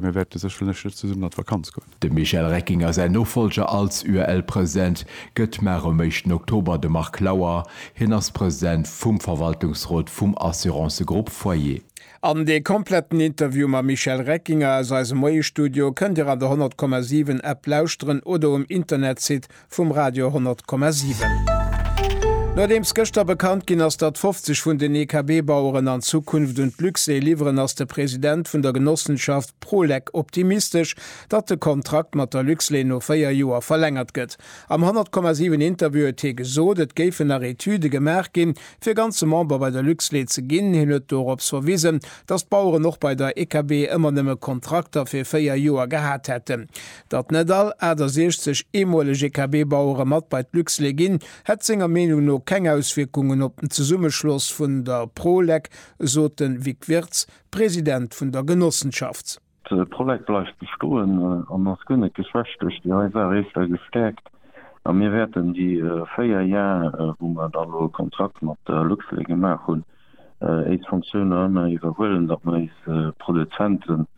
Mir wäerte sécherlech net zesummen an d'Vakanz goen. Dem Michel Reckinger säin Nofollger als UEL-President gëtt Mar um éischten Oktober de Marc Lauer. Hien ass President vum Verwaltungsrot vum Assurancegrupp Foyer. An dee kompletten Interview mam Michel Reckinger aus eisem Moie-Studio kënnt Dir an der 100,7 App lauschteren oder um Internetsite vum Radio 10,7. Nodeems gëschter bekannt ginn ass, datt 50 vun den EKB-Baueren an Zukunft un d'Luxair liwweren, ass de President vun der Genossenschaft Prolec optimistesch, datt de Kontrakt mat der Luxlait no 4 Joer verlängert gëtt. Am 10,7 Interview huet hie gesot, et géifen nach Etüde gemaach ginn, fir ganze Member bei der Luxlait ze ginn. Hien huet dorops verwisen, datt d'Baueren och bei der EKB ëmmer nëmme Kontrakter fir 4 Joer gehat hätten. Datt net all 68 eemoleg EKB-Bauere mat bei d'Luxlait ginn, hätt senger Meenung no keng Auswierkungen op den Zesummeschloss vun der Prolec, sot de Vic Wirtz, President vun der Genossenschaft. D'Prolec bleift bestoen an ass guer net geschwächt duerch déi nei Saach, éischter gestäerkt. A mir wäerten déi véier Jar, wou mer da lo e Kontrakt mat der Luxlait gemaach hunn, éis Fonctiounen ëmmer iwwerhuelen, datt mer éis Produzenten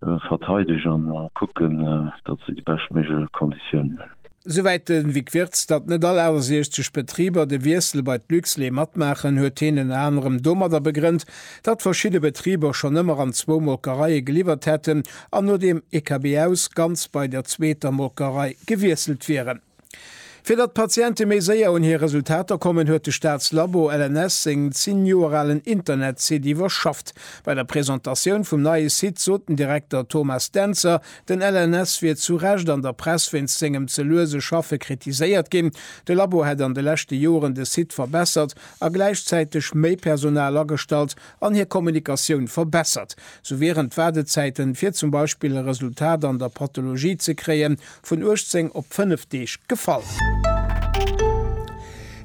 verteidegen a kucken, datt se déi beschtméiglech Konditiounen hunn. Souwäit de Vic Wirtz. Datt net all 68 Betriber de Wiessel bei d'Luxlait matmaachen, huet heen ënner anerem domadder begrënnt, datt verschidde Betriber schonn ëmmer an zwou Molkereie geliwwert hätten an no dem EKB aus ganz bei der zweeter Molkerei gewiesselt wieren. Fir datt d'Patiente méi séier un hir Resultater kommen, huet de Staatslabo LNS seng 10 Joer alen Internetsite iwwerschafft. Bei der Presentatioun vum neie Site sot den Direkter Thomas Dentzer, den LNS wier zu Recht an der Press wéinst sengem ze luese Schaffe kritiséiert ginn. De Labo hätt an de leschte Joren de Site verbessert a gläichzäiteg méi Personal agestallt, an hir Kommunikatioun verbessert, sou wieren d'Waardezäiten, fir zum Beispill e Resultat an der Pathologie ze kréien, vun 18 op 5 Deeg gefall.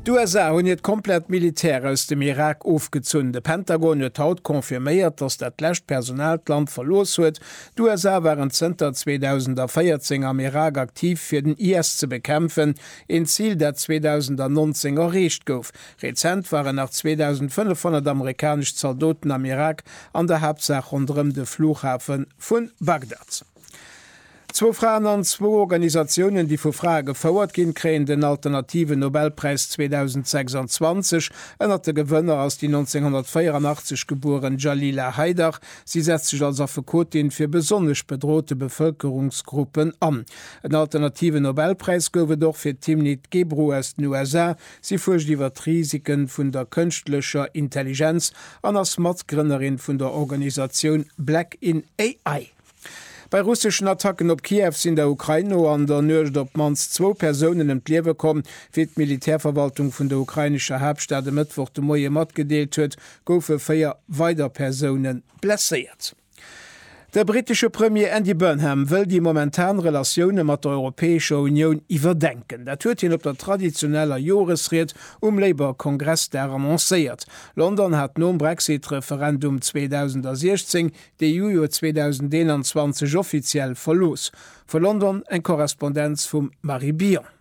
D'USA hunn hiert komplett Militär aus dem Irak ofgezunn. De Pentagon huet haut confirméiert, datt dat lescht Personal d'Land verlooss huet. D'USA waren zënter 2014 am Irak aktiv, fir den IS ze bekämpfen, een Zil, dat 2019 erreecht gouf. Rezent waren nach 2.500 amerikanesch Zaldoten am Irak, an der Haaptsaach ronderëm de Flughafe vu Bagdad. Zwou Fraen an zwou Organisatiounen, déi vu Frae gefouert ginn, kréien den alternativen Nobelpräis 2026. Ënnert de Gewënner ass déi 1984 gebueren Jalila Haidar. Si setzt sech als Affekotin fir besonnesch bedrote Bevëlkerungsgruppen an. En alternativen Nobelpräis gouf et och fir d'Timnit Gebru aus den USA, Si fuerscht iwwer d'Risike vun der kënschtlecher Intelligenz an ass Matgrënnerin vun der Organisatioun Black in AI. Bei russeschen Attacken op Kiew sinn der Ukrain no an der Nuecht op d'mannst zwou Persounen ëm d'Liewe komm. Wéi d'Militärverwaltung vun der ukrainescher Haaptstad e Mëttwoch de Moie matgedeelt huet, goufe véier weider Persoune blesséiert. De brittesche Premier Andy Burnham wëll déi momentan Relatioune mat der Europäescher Unioun iwwerdenken. Dat huet hien op der traditioneller Joresried um Labour-Kongressdag annoncéiert. London hat nom Brexit-Referendum 2016 d'EU jo 2021 offiziell verlooss. Vu London eng Korrespondenz vum Marie Bion.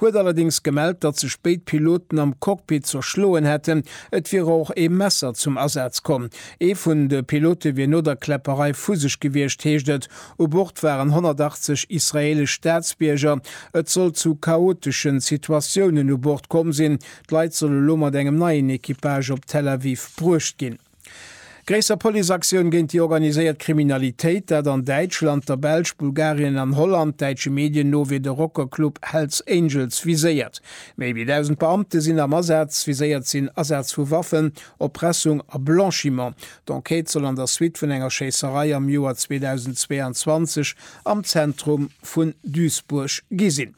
huet allerdéngs gemellt, datt sech béid Piloten am Cockpit zerschloen hätten. Et wier och ee Messer zum Asaz komm. Ee vun de Pilote wier no der Kläpperei vu sech gewiescht, heescht et. U Bord waren 180 israeelesch Staatsbierger. Et soll zu chaotesche Situatiounen u Bord komm sinn. D'Leit solle lo mat engem neien Equipage op Tel Aviv bruecht ginn. Gréisser Policeaktioun géint déi organiséiert Kriminalitéit, dat an Däitschland, der Belsch, Bulgarien an Holland. Däitsche Medien no wier de Rockerclub Hell's Angels viséiert. Méi wéi 1.000 Beamte sinn am Asaz. Viséiert sinn Asaz vu Waffen, Erpressung a Blanchiment. D'Enquête soll an der Suite vun enger Schéisserei am Joer 2022 am Zentrum vun Duisburg gi sinn.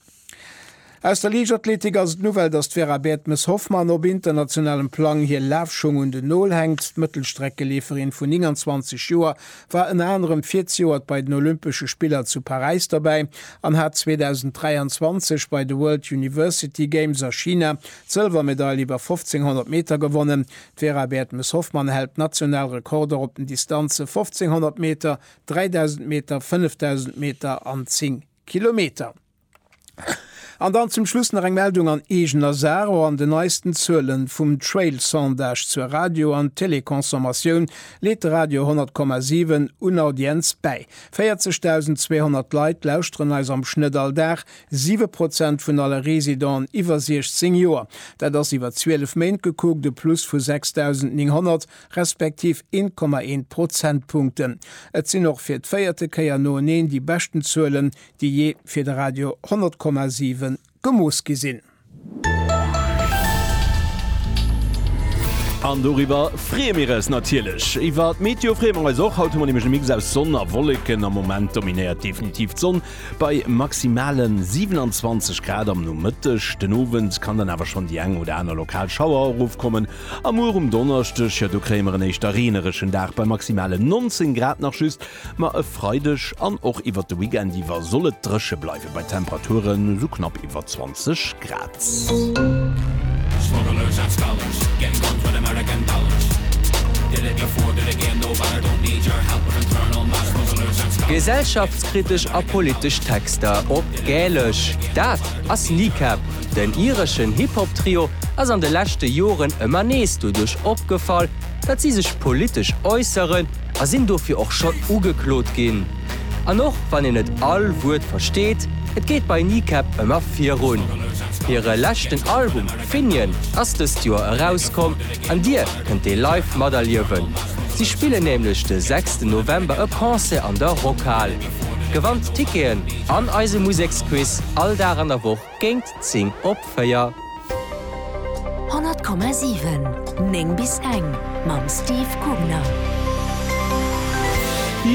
Aus der Liichtathletik ass et d'Nouvelle, datt d'Vera Bertmes-Hoffmann op internationalem Plang hir Lafschung un den Nol hänkt. D'Mëttelstreckeleeferin vun 29 Joer war ënner anerem virzejoert bei den Olympesche Spiller zu Paräis dobäi an hat 2023 bei de World University Games a China d'Sëlwermedail iwwer 1500 Meter gewonnen. D'Vera Bertmes-Hoffmann hält national Rekorder op den Distanze 1500 Meter, 3000 Meter, 5000 Meter an 10 Kilometer. An dann zum Schluss nach eng Meldung an eegener Saach, Och an den neisten Zuelen vum Trail-Sondage zur Radio an Télé-Consommatioun leet de Radio 100,7 un Audienz bäi. 40.200 Leit lauschteren eis am Schnëtt all Dag, 7 Prozent vun alle Residenten iwwer 16 Joer. Dat ass iwwer 12 Méint gekuckt e Plus vu 6.900, respektiv 1,1 Prozentpunkten. Et sinn och fir d'véierte Kéier noeneen déi beschten Zuelen, déi jee fir de Radio 10,7 gemooss gi sinn. An doriwwer freeë mir eis natierlech. Iwwer d'Meteo freeë mer eis och. Haut hu mer nämlech e Mix aus Sonn a Wolleken. Am Moment dominéiert definitiv d'Sonn bei maximale 27 Grad am Nomëtteg. Den Owend kann dann awer schonn déi eng oder aner lokal Schauer erofkommen. A muer um Donneschdeg, jo do kréie mer en éischter reenereschen Dag bei maximalen 19 Grad nach just, ma e Freideg an och iwwert de Weekend iwwer soll et dréche bleiwe bei Temperaturen esou knapp iwwer 20 Grad. Gesellschaftskritesch a politesch Texter op Gälesch, dat ass Kneecap! Den ireschen Hip-Hop-Trio ass an de leschte Joren ëmmer nees doduerch opgefall, datt si sech politesch äusseren a sinn dofir och schonn ugeklot ginn. An och wann een net all Wuert versteet, et geet bei Kneecap ëmmer virun. Hire leschten Album Finian ass dëst Joer erauskomm an Dir kënnt dee live materliewen. Si spillen nämlech de sechsten November e Concert an der Rockhal. Gewannt Ticketen an eise Museksquiz all Dag an der Woch. Géint 10 op 4. 100,7, 9 bis eng mam Steve Gubner.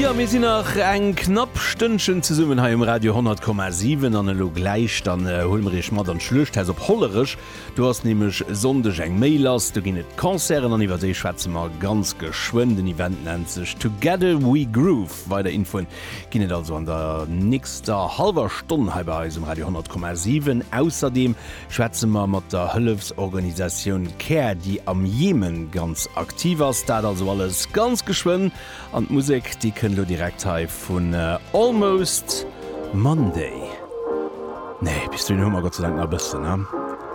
Jo, mir sinn nach eng knapp Stënnchen zesummen hei um Radio 100,7 an elo gläich dann huele mer iech mat an d'Schluechthaus op Hollerech. Do ass nämlech Sonndeg eng méi lass, do ginn et Concerten an iwwer déi schwätze mer ganz geschwënn. Den Event nennt sech Together We Groove. Weider Infoen ginn et also an der nächster hallwer Stonn hei bei eis um Radio 10,7. Ausserdeem schwätze mer mat der Hëllefsorganisatioun care, déi am Jemen ganz aktiv ass. Dat also alles ganz geschwënn an d'Musek, déi kënnt lo direkt hei vun Almost Monday. Nee, bis dohin hu mer Gott sei Dank nach e bëssen, ne?